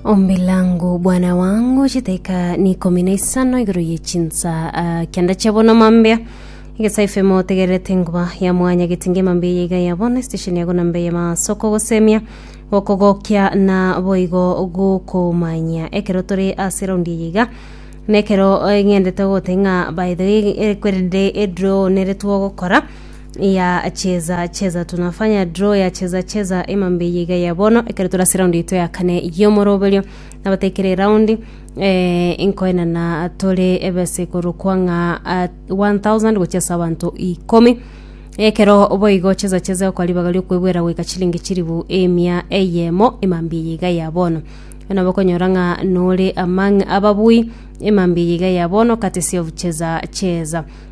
Ombi langu bwana wangu chitaika ni ikomi na isano igoro ye chinsa ah, kianda chia bono mambia igesaife motegererete nguba ya mwanya getinge mambia yeiga ya bono station ya gonamba ya masoko gosemia gokogokia na boigo gokomanya ekero tore ase raundi eye iga nekero eh, ng'endete gote ng'a by the way eh, kwerende edro neretwo gokora ya cheza cheza tunafanya draw ya cheza cheza emambe yiga ya bono ekero turase round yaito ya kane yomoroberio nabatekere round eh, inkoenana tore ebese korokwa ng'a ah, 1000 gochia ase abanto ikomi ekero boigo cheza cheza okaribaga riokwebwera goika chilingi chiribu emia eyemo emambi yiga ya bono ona bakonyora ng'a nore among ababui emambi yiga ya bono courtesy of cheza cheza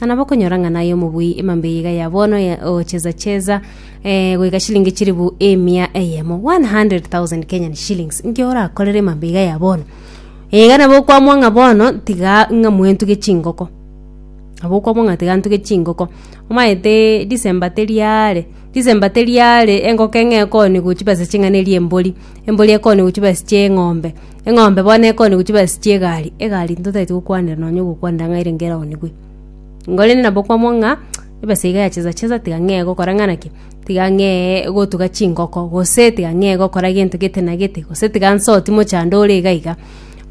na nabo okonyora ng'a naye omobui emambe eye iga ya bono ya ocheza cheza eh, goika shilingi chiribu emia eyemo 100,000 Kenyan shillings nki orakorere emambe iga ya bono iga nabo okwamwa ng'a bono tiga ng'a mwentuge chingoko nabo okwamwa ng'a tiga ntuge chingoko omaete December teriare December teriare engoko eng'e ekoni gochia besa ching'ana eria embori embori ekoni gochia besa chia eng'ombe Eng'ombe bono ekonigwa chiba ase chi'egaari, egaari ntotaeti gokwanera nonya ogokwanera ng'a ere nkeronigwe. Igo rende nabo kwamwaa ng'a ebesa iga ya chesa chesa tiga ng'ee gokora ng'a naki, tiga ng'ee gotuga chingoko, gose tiga ng'ee gokora gento gete na gete, gose tiga nsoti mochando ore iga iga.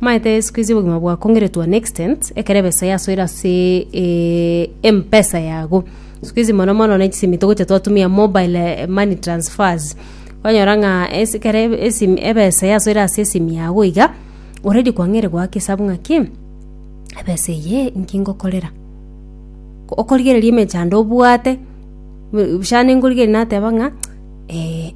Omanyete sikuizi obogima bwakongire to an extent, ekero ebesa yasoire aseee eeee empesa yago, sikuizi mono mono ne chisimiti gocha twatumia mobile money transfers. Kwanyora ng'a ase ekero ebe- esimi ebesa yasoire ase esimi yago iga, oredi kwang'eire goaka esabu ng'aki, ebesa eye inki ngokorera? Ko- okorigereria emechando obwate, bu- busha ande nkorigereria nateba ng'a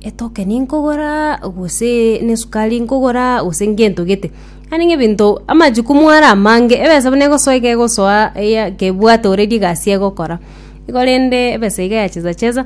etokeni nkogoraa gose na esukari nkogoraa gose ngento gete, yaani ng'a ebinto amachukumu are amange, ebesa buna egosoa iga egosoa eya kebwate oredi egasi egokora. Igo rende ebesa iga yachesa chesa.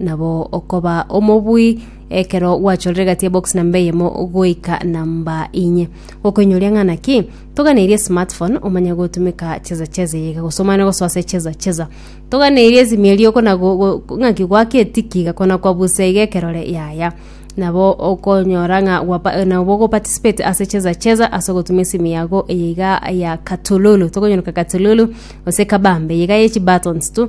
Nabo okoba omobui ekero gwachorire egati ya box namba eyemo goika namba inye. Gokoinyoria ng'a naki toganeirie smartphone omanye gotumeka cheza cheza eyeiga gose omanye gosoa ase cheza cheza. Toganeirie esimi eria okona go- go- ng'aki goaka etiki iga kona kwabusa iga ekerore yaya. Nabo okonyora ng'a gwapa nabo ogoparticipate ase cheza cheza ase ogotumia esimi yago eyeiga ya katululu, tokonyeroka katululu gose kabambe eyeiga ye chibuttons tu.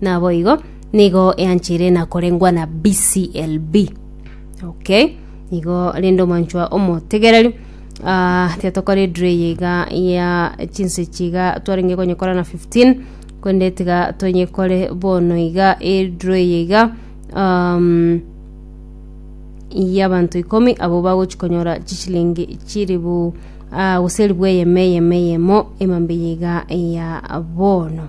Naboigo, nigo eanchire na korengwa na BCLB. Okay. Nigo rende omonchwa omotegereri. Ah, tiatokore dre yega ya chinse chiga twarenge konyekora na 15 kwende tiga tonyekore bono iga edre yega um, y'abantu ikomi abo bagochikonyora chishilingi chiribu ah, gose eribu eyemo eyemo eyemo emambe yega ya bono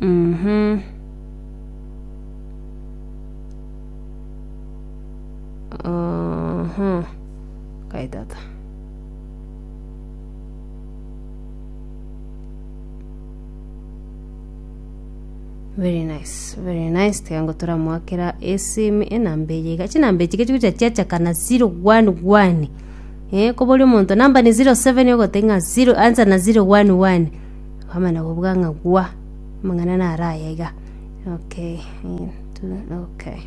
Mhm. Mhm. Kai tata. Very nice, very nice. Tiga ngo turamwakera esimu enamba eye iga. Chinamba echi gechi gocha chiachakana 011. Eh, kobori omonto namba ni 07 ogoteba ng'a 0 ansa na 011. Okomanya kobua ng'a gwa, amang'ana naro aya iga. Okay, eeh, tu, okay.